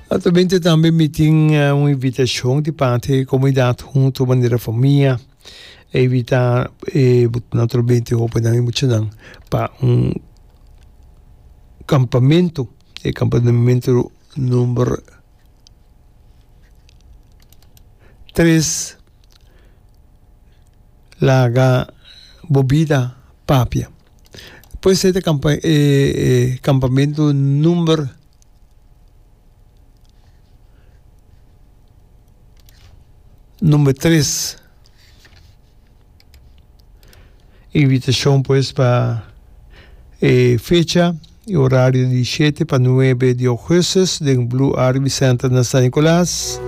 Atamente tambe mi tin eh, un invitacion di parte di comunidad junto manera famia. E invita eh, naturalmente hopenan y muchanan pa un campamento. E campamento number tres laga bobida papia. Puede ser ta e campamento number number tres invitacion pues pa e fecha y horario di shete pa nuebe di augustus den blue rb center na san nicolas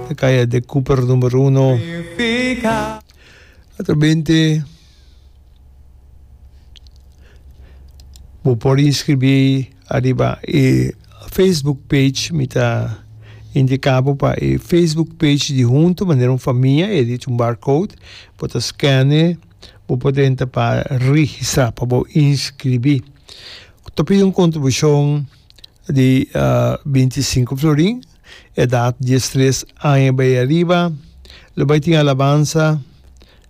na caya de cooper number uno atrabente Bo por inscribí ariba e Facebook page, mi ta indica bo pa e Facebook page di Hunto manera un famia, e di Tumbar Code, bo ta scane, bo por drenta pa registra, pa bo inscribí. Ta pidi un contribucion di binti sinku florin, edad diestres aña bai ariba, lo bai tin alabansa.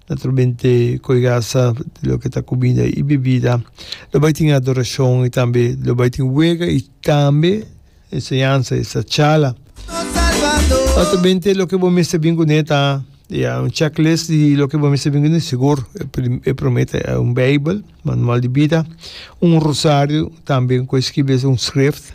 Naturalmente cu e gasa lo que ta comida y bebida. Lo bay tin adoracion y tambe lo bay tin wega y tambe enseñansa y sa chala. Naturalmente lo que bo mester bin cune ta ya un checklist di lo que bo mester bin cune sigur e prome ta un bijbel, manual di bida, un rosario tambe cu e skibi es un scrift.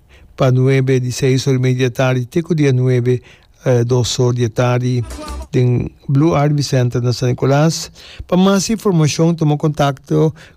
pa nuebe di seis or y media di e tardi te ku dia nuebe dos or di e tardi den Blue Ivy Center na San Nicolas. Pa mas informashon tuma kontakto.